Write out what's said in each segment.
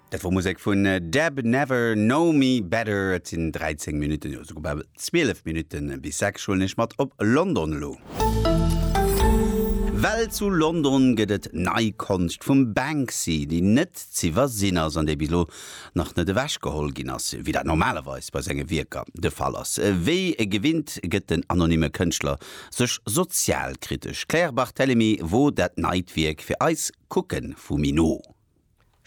Dat wor Musek vun Deb Never Know Me Better. Et sinn 13 Minutten, jo souguer bal 12 Minutten bis 6, huelen iech mat op London elo. Well zu London gëtt et nei Konscht vum Banksy, déi net z'iwwersinn ass an déi bis elo nach net ewech geholl ginn ass, wéi dat normalerweis bei senge Wierker de Fall ass. Wéi gewinnt gëtt den anonymme Kënschtler sech sozialkritesch. D'Claire Barthelemy wor dat neit Wierk fir eis. kucken vu mi no.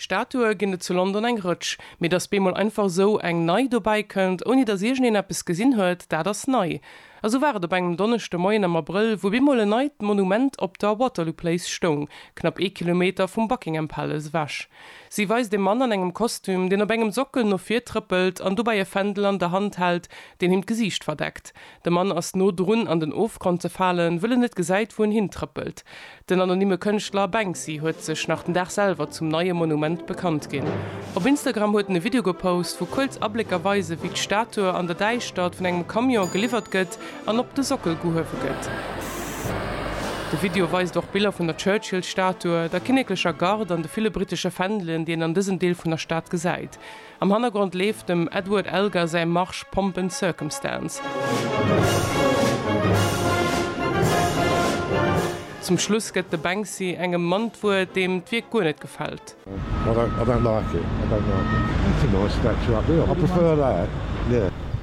Statue ginn et zu London eng Rëtsch, mee dass bemol einfach esou eng nei dobäi kënnt, ouni dass iergendeen eppes gesinn huet, dat ass nei. Esou war et op engem Donneschde Moien am Abrëll, wou bemol en neit Monument op der Waterloo Place stoung, knapp ee Kilometer vum Buckingham Palace ewech. Si weist e Mann an engem Kostüm, deen op engem Sockel no vir trëppelt an dobäi e Fändel an der Hand hält, deen him d'Gesiicht verdeckt. De Mann ass no drun an den Ofgrond ze falen, wëll en net gesäit, wou en hintrëppelt. Den anonymme Kënschtler Banksy huet sech nach den Dag selwer zum neie Monument bekannt ginn. Op Instagram huet en e Video gepost, wou kuerz Ablécker weisen, wéi d'Statue an der Däischtert vun engem Camion geliwwert gëtt an op de Sockel gehuewe gëtt. De Video weist och Biller vun der Churchill-Statue, der kinneklecher Garde an de ville brittesche Fändelen, déi een an dësem Deel vun der Stad gesäit. Am Hannergrond leeft dem Edward Elgar säi Marsch Pomp and Circumstance. Zum Schluss gëtt de Banksy engem Mann d'Wuert, deem d'Wierk guer net gefält.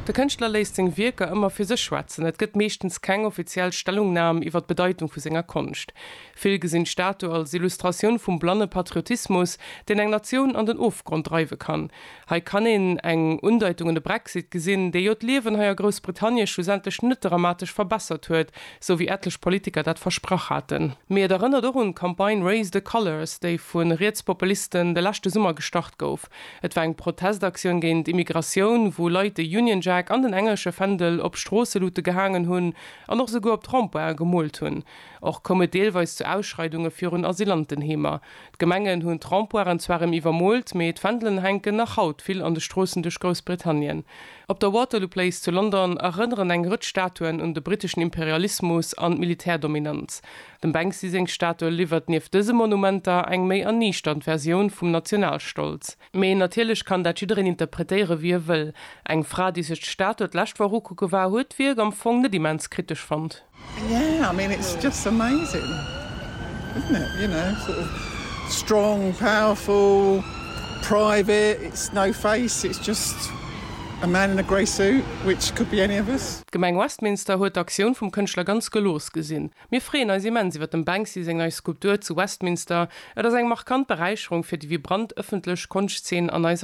De Kënschtler léisst seng Wierker ëmmer fir sech schwätzen, et gëtt meeschtens keng offiziell Stellungnam iwwer d'Bedeitung vu senger Konscht. Vill gesinn d'Statu als Illustratioun vum blanne Patriotismus, deen eng Natioun an den Ofgrond dreiwe kann. Hei kann een eng Undeitung un de Brexit gesinn, dee jo d'Liewen hei a Groussbritannie schlussendlech net dramatesch verbessert huet, sou wéi etlech Politiker dat versprach haten. Mee et erënnert och un d'Campagne Raise the Colours, déi vu Rietspopulisten de leschte Summer gestart gouf. Et war eng Protestaktioun géint Immigratioun, wou Leit de Union Jack an den englesche Fändel op Stroosselute gehaangen hunn an och esouguer op d'Rond-pointen gemoolt hunn. Och koum et deelweis zu Ausschreidunge virun Asylantenheemer. D'Gemengen hunn d'Rempoiren zwar rem iwwermoolt, mee d'Fändelen hänken nach haut vill an de Stroossen duerch Groussbritannien. Op der Waterloo Place zu London erënneren eng Rëtsch Statuen un de briteschen Imperialismus an d'Militärdominanz. Dem Banksy seng Statue liwwert nieft dëse Monumenter eng méi erniichternd Versioun vum Nationalstolz. Mee natierlech kann dat jiddereen interpretéiere wéi e wëll. Eng Fra, déi sech d'Statue d'lescht Woch ukucke war, huet d'Wierk am Fong net immens kritesch fonnt. D'Gemeng Westminster huet d'Aktioun vum Kënschtler ganz gelooss gesinn. Mir freeën eis immens iwwer dem Banksy seng nei Skulptur zu Westminster. Et ass eng markant Beräicherung fir déi vibrant ëffentlech Konschtzeen an eiser Stad.